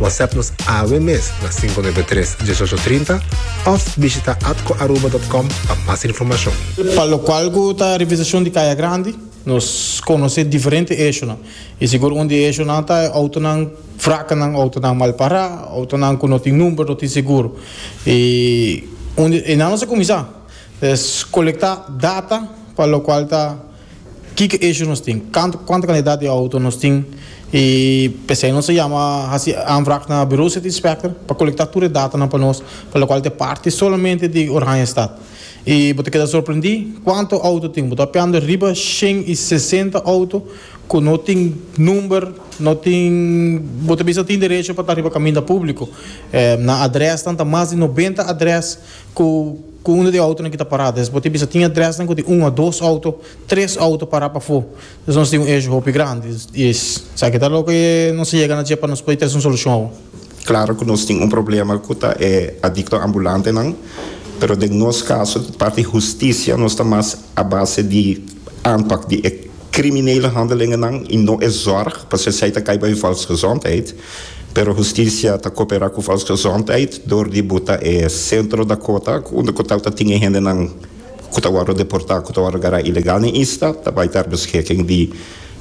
WhatsApp nos awe mes na 593 1830 of bishita atcoaruba.com pa mas informacion. Pa locual cu ta revisacion di Caya Grandi, nos conoce diferente eishonan y sigur un di eishonan ta e autonan fracanan, autonan mal para, autonan cu no tin number, no tin seguro. Y un di enan nos a cuminsa es colecta data pa locual ta. Kiko issue nos tin? Kantu kuantu kantidat di outo nos tin y p'esei nos a yama hasi aanvraag na Bureau City Inspector pa kolektá tur e datanan pa nos, pa lokual ta e parti solamente di Oranjestad. Y bo ta keda sorprendí kuantu outo tin, bo ta hopiando riba shen y sesenta outo ku no tin number, no tin, bo ta bisa tin derecho pa ta riba kaminda públiko. Nan adrèsnan ta mas di nobenta adrès. ku ku uno di outonan ki ta pará. Entonces bo tin bisa tin adrèsnan ku tin un o dos outo, tres outo pará pafó. Entonces nos tin un eshio hopi grandi. I esaki ta loke nos a yega na dje pa nos pudi trese un solushon awe. Klaro ku nos tin un problema ku ta e adikto ambulantenan, pero den nos kaso di parti hustisia nos ta mas a base di aanpak di e kriminele handelingennan i no e zòrg, pasobra esei ta kai bai volksgezondheid. Pero hustisia ta koperá ku Fausto Zontijd dor di buta e Centro Dakota unda ku tal ta tin e hendenan ku ta wòrdu deportá ku ta wòrdu gará ilegal den isla ta bai ta arbeschiking di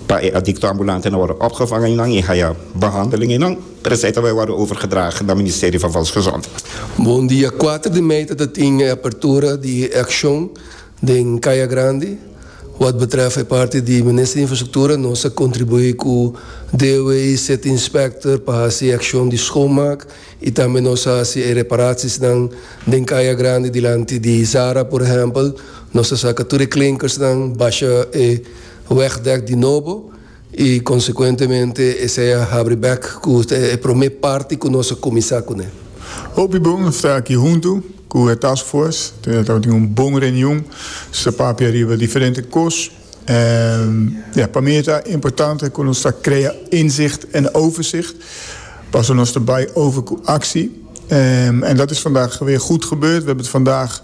pa e adikto ambulantenan wòrdu opgevang einan i haya behandeling einan pero esei ta bai wòrdu overgedrage na Ministerio van Volksgezondheid. Bon dia kuater di mei ta ta tin e apertura di e akshon. Den Kaya Grandi, wad betrèf e parti di Minister di Infrastruktura, nos a kontribuí ku DOW i City Inspector pa hasi e akshon di schoonmaak i tambe nos a hasi e reparaciesnan den Kaya Grandi. Dilanti di Zara, por ehèmpel, nos a saka tur e klinkers nan, basha e wegdèk di nobo. I konsekuentemente esei a habri bèk ku ta e promé parti ku nos a kuminsá kuné. Hopi bon a sta aki huntu ku e task force. Nos a tabata tin un bon reunion. Nos a papia riba diferente kos. En ja, pa mi ta importante ku nos ta krea inzicht en overzicht. Paso nos ta bai over ku aksi. En dat is vandag weer goed gebeurd. We hebben het vandaag.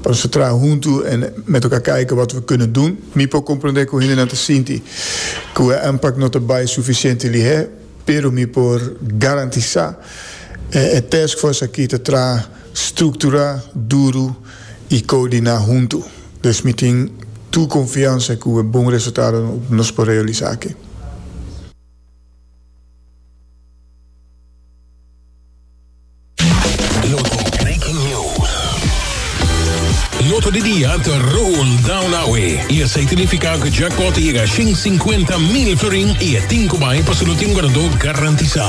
Pa nos ta traha huntu en me toka kijk wata we kende doen. Mi por comprende cu hendenan ta sinti cu e aanpak no ta bay suficiente lihé, pero mi por garantisa e e taskforce aki ta traha structura, duru y coordina huntu. Des mi tin tur confiansa cu e bon resultado no nos por realisa aki. Loto Breaking News. Loto di dia ta run down awe y esey tinifica cu jackpot ta yega shin cincuenta mil florin y e tin cu bay pa su lutin ganador garantisa.